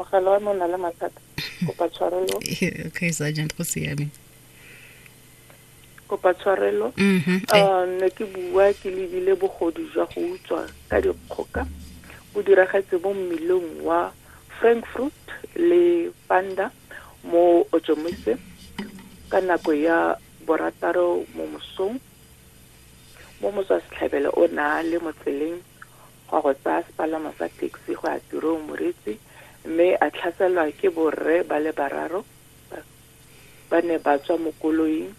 mogala wa me o na le mathata kopa tshwarelo okay sergeant go siame kopa tshwarelo mm-hmm. eh. ah, ne ke bua ke lebile bogodu jwa go utswa ka dikgoka bo diragetse mo mmelong wa frankfurt le panda mo ojomise ka nako ya borataro mo mosong mo motswa setlhabelo o na le motseleng go ya go tsaya sepalamo sa taxi go ya tirong moreetsi mme a tlhaselwa ke borre ba le bararo ba ne ba tswa mo koloing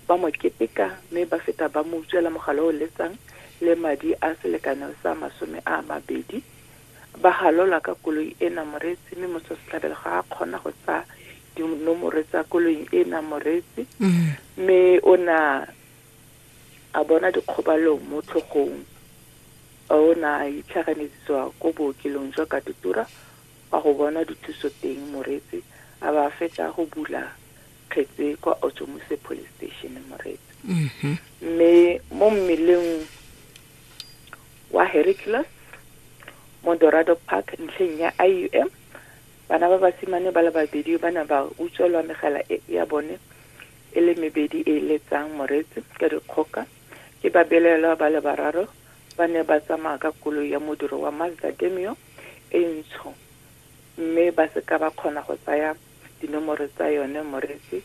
ba mo keteka mme ba feta ba mo utswela mogala o letsang le madi a selekano sa masome a mabedi ba galola ka koloi ena moreetsi mme motho setlhabelo ga a kgona go tsaya dinomoro tsa koloing ena moreetsi mme o na a bona dikgobalo mo tlhogong fa o ne a itlhaganetsiswa ko bookelong jwa Katutura go a go bona dithuso teng Moreetsi a ba a fetsa go bula kgetse kwa Otjomuse Police Station Moreetsi mme mo mmeleng wa Hercules mo Dorado Park ntlheng ya IUM bana ba basimane ba le babedi ba ne ba utswelwa megala e ya bone e le mebedi e e letsang moreetsi ka dikgoka, ke babelaelwa ba le bararo ba ne ba tsamaya ka koloi ya modiro wa Mazda Demio e ntsho mme ba se ka ba kgona go tsaya dinomoro tsa yone moreetsi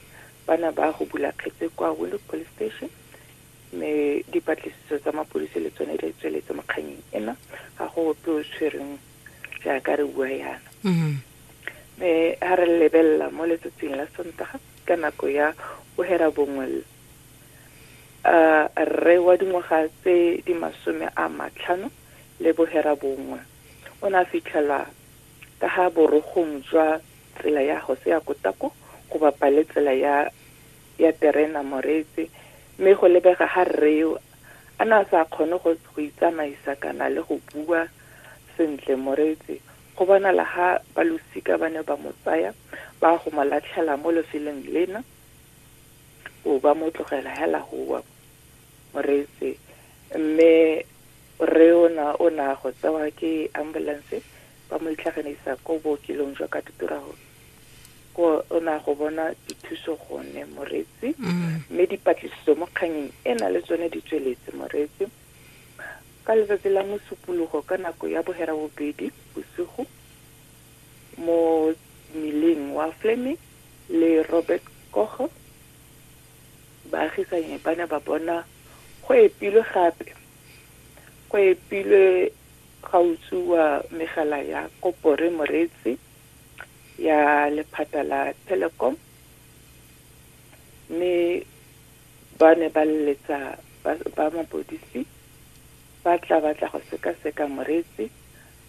ba ne ba hubula kgetse kwa Windhoek Police Station mme dipatlisiso tsa mapodisi le tsone di tsweletse mo kganyeng ena ga go ope o tshwereng jaaka re bua yana mme ha re lebelela mo letsatsing la sontaga ka nako ya bohera bongwe l a rre wa dingwaga tse di masome a matlhano le bohera bongwe o ne a fitlhelwa ka ga borogong jwa tsela ya gose ya kotako go bapa le tsela ya ya terena moretse mme go lebega ga rreo a ne a sa kgone go go itsamaisa kana le go bua sentle moretse Go bonala ha balosika ba ne ba mo tsaya ba ya go mo latlhela mo lefelong lena, bo ba mo tlogela hela go wa moreetse. Mme rre ona o ne a go tsewa ke ambulance ba mo itlhaganisa ko bookelong jwa Katuturaho, ko o ne a go bona dithuso gone moreetsi. Mme dipatlisiso mo kganyeng ena le tsone di tsweletse moreetsi. Ka letsatsi la Mosupologo ka nako ya boherabobedi bosigo mo mmileng wa Fleming le Robert Koch, baagisanyi ba ne ba bona go epilwe gape go epilwe ga utswiwa megala ya kopore moreetsi ya lephata la Telecom mme Ba ne ba leletsa ba mapodisi ba tla ba tla go sekaseka Moreetsi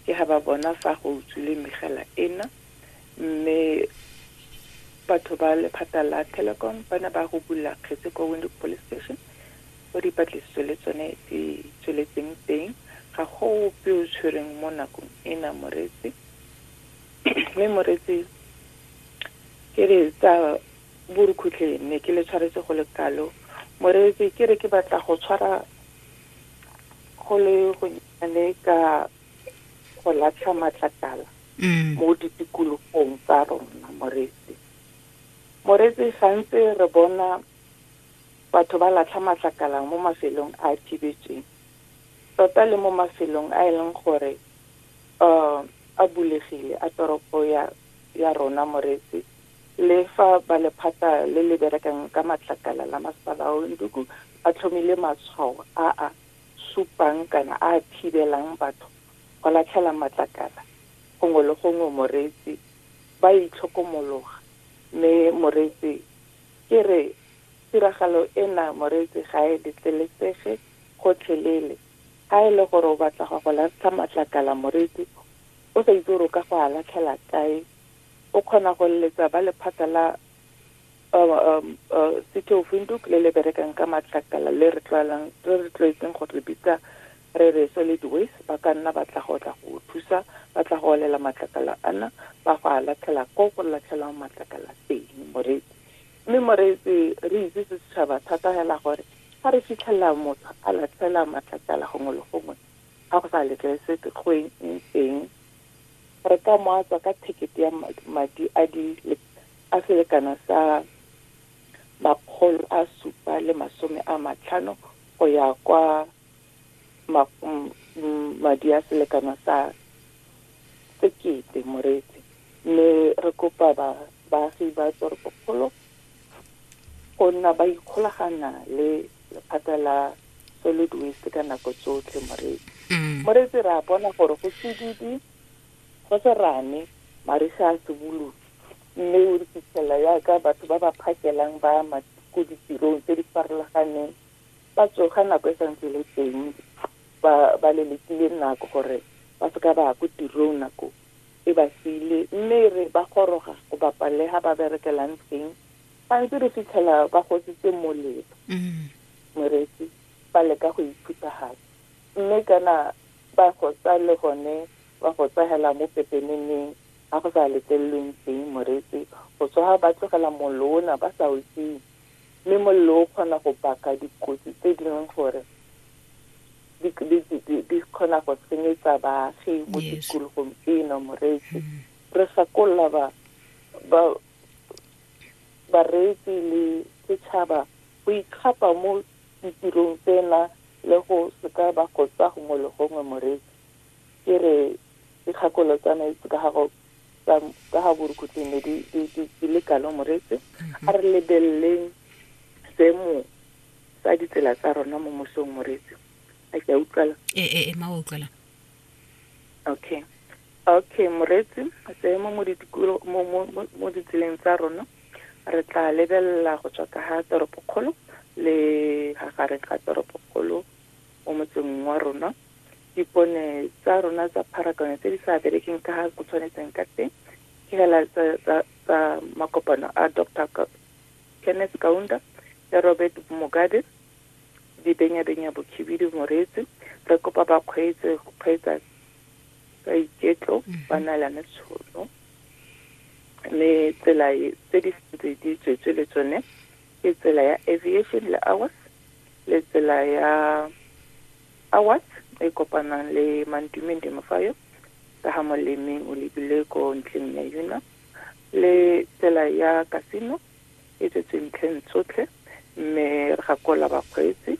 ke ha ba bona fa go utswile megala ena mme batho ba lephata la Telecom ba ne ba rubolola kgetse kwa Windhoek Police Station ko dipatlisiso le tsone di tsweletseng teng. Ga go ope o tshwereng mo nakong ena Moreetsi mme Moreetsi ke re tsa Borukhutlhe ne ke le tshwaretse go le kalo moreetsi ke re ke batla go tshwara go le gonnyane ka go latlha matlakala mm. mo ditikologong tsa rona moreetsi moreetsi gantse re bona batho ba latlha matlakala mo mafelong a a thibetsweng tota le mo mafelong a e leng gore um a bulegile a toropo ya ya rona moreetsi Le fa ba lephata le le berekang ka matlakala la Masepala wa Windhoek ba tlhomile matshwao a a supang kana a a thibelang batho go latlhela matlakala gongwe le gongwe moreetsi, ba a itlhokomologa. Mme moreetsi ke re tiragalo ena moreetsi ga e letlelesege gotlhelele. Ga e le gore o batla go ya go latlha matlakala moreetsi o sa itse gore o ka go a latlhela kae o kgona go leletsa ba lephata la um, um, uh, city of windhoek le le berekang ka matlakala le re tlwaelang re re tlwaetseng go re bitsa re re solid waste ba ka nna ba tla go tla go thusa ba tla go olela matlakala ana ba go a latlhela ko go latlhelwang matlakala teng moreetsi mme moreetsi re itse se setšhaba thata hela gore ga re fitlhelela motho a latlhela matlakala gongwe le gongwe ga go sa letlelesetse go eng teng re ka mo a tswa ka thekete ya madi a di a selekano sa makgolo a supa le masome a matlhano go ya kwa madi a selekano sa sekete moreetsi mme re kopa ba baagi ba toropokgolo go nna ba ikgolagana le lephata la solid waste ka nako tsotlhe moreetsi mm. moreetsi re a bona gore go sedidi go serane mariga a seboloki mme o re fitlhela yaka batho ba ba phakelang ba ama ko ditirong tse di farologaneng ba tsoga nako e santse le teng ba lelekile nako gore ba seka ba ya ko tirong nako e ba sile mme re ba goroga go bapalega ba berekelang teng gantsi re fitlhela ba gositse molelo mm. Moreetsi, ba leka go e phuthagatsa. Mme kana ba go tsa le gone ba go tsahela mo pepeneneng ga go sa letlelelweng teng, Moreetsi, go tswa ba tlogela mollo ona ba sa o tima. Mme mollo o kgona go baka dikotsi tse di leng gore di kgona go senyetsa baagi mo tikologong eno, Moreetsi. Re gakolola ba bareetsi le setšhaba go ikgapa mo ditirong tsena le go seka ba gotsa gongwe le gongwe moreetsi ke re dikgakolo tsa metsi ka gago ka ga borukhutleng ne di le kalo moreetsi a re lebeleleng seemo sa ditsela tsa rona mo mosong moreetsi a ke a utlwala ee ee ma wa utlwalang okay okay moreetsi seemo mo ditikulo mo mo mo- mo ditseleng tsa rona re tla lebelela go tswa ka ga toropokgolo le ga gare ga toropokgolo mo motseng wa rona dipone tsa rona tsa pharakano tse di sa berekeng ka ga go tshwanetseng ka teng ke hela tsa tsa- tsa makopano a dr Ka- kenneth kaunda le robert mogade Dibenyabenya Bokhibidu Moreetsi, re kopa ba kgweetse go kgweetsa ka iketlo mhm. ba neelane tshono mme tsela e, tse di sentse di tswetswe le tsone ke tsela ya aviation le hours le tsela ya hours e kopanang le mantumeng demofayo ka ga molemeng o lebile ko ntleng ya yuna le tsela ya casino e tletse ntlheng tsotlhe mme re gakola bakgweetsi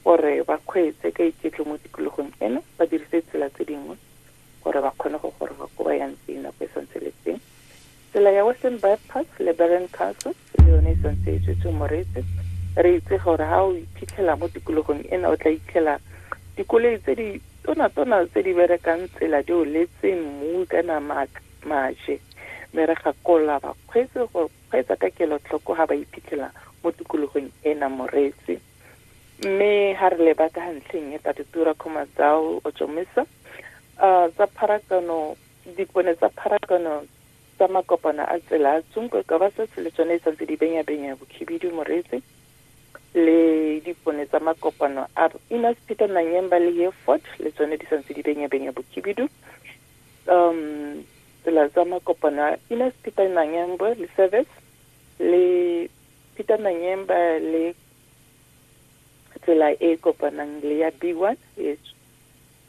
gore ba kgweetse ka iketle mo tikologong eno ba dirise tsela tse dingwe gore ba kgone go goroga ko ba yang teng nako e santse le teng tsela ya western bypass le barren council le yone e santse e tswetse moreetse re itse gore ga o iphitlhela mo tikologong ena o tla itlhela dikoloi tse di tonatona tse di berekang tsela di o letse mmu ka namaka maje, mme re gakolola bakgweetsi go kgweetsa ka kelotlhoko ga ba iphitlhela mo tikologong ena moreetsi. Mme ga re leba ka ga ntlheng e Tatitura Khumadzau Otshomisa, um tsa pharakano, dipone tsa pharakano tsa makopano a tsela a tsunkwe ka ba setse le tsone e santse di benyabenya bokhibidu moreetsi, le dipone tsa makopano a Innospito Nanyemba le Hereford le tsone di santse di benyabenya bokhibidu. um tsela tsa makopano a Ines Peter Nanyembo le service le Peter Nanyemba le tsela e e kopanang le ya B1 e ts-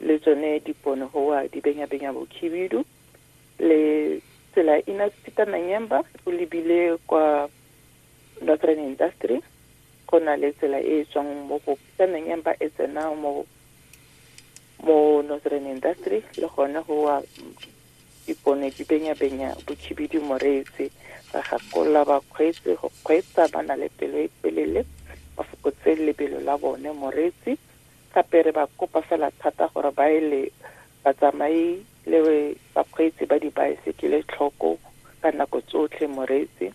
le tsone dipono goa di benyabenya bokhibidu le tsela Ines Peter Nanyemba o lebile kwa Northern Industry go na le tsela e e tswang mo go Peter Nanyemba e tsena mo mo northern industry le gone go wa dipone di benya-benya botšhibidi moretse ba gakolola bakgweetsi go kgweetsa ba na le pelo e telele ba fokotse lebelo la bone moreetsi gape re ba kopa fela thata gore ba ele batsamai le bakgweetsi ba dibaesekele tlhoko ka nako tsotlhe moreetsi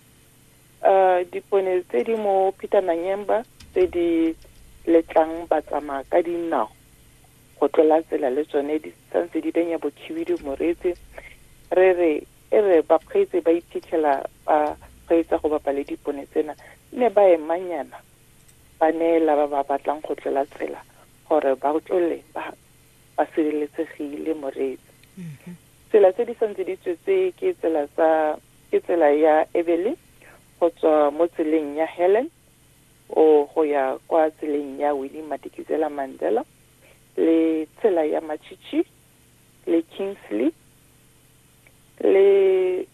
Dipone tse di mo Peter Manyemba tse di letlang batsamaya ka dinao go tlola tsela le tsone di santse di benya bokhibidu moretse re re e re bakgweetsi ba iphitlhela ba kgweetsa go bapa le dipone tsena ne ba emanyana ba neela ba ba batlang go tlola tsela gore ba tlole ba ba sireletsegile moretse mm-hmm. tsela tse di santse di tswetse ke tsela tsa Ke tsela ya Ebele go tswa mo tseleng ya Helen o go ya kwa tseleng ya Winnie Madikizela Mandela le tsela ya Machichi le Kingsley le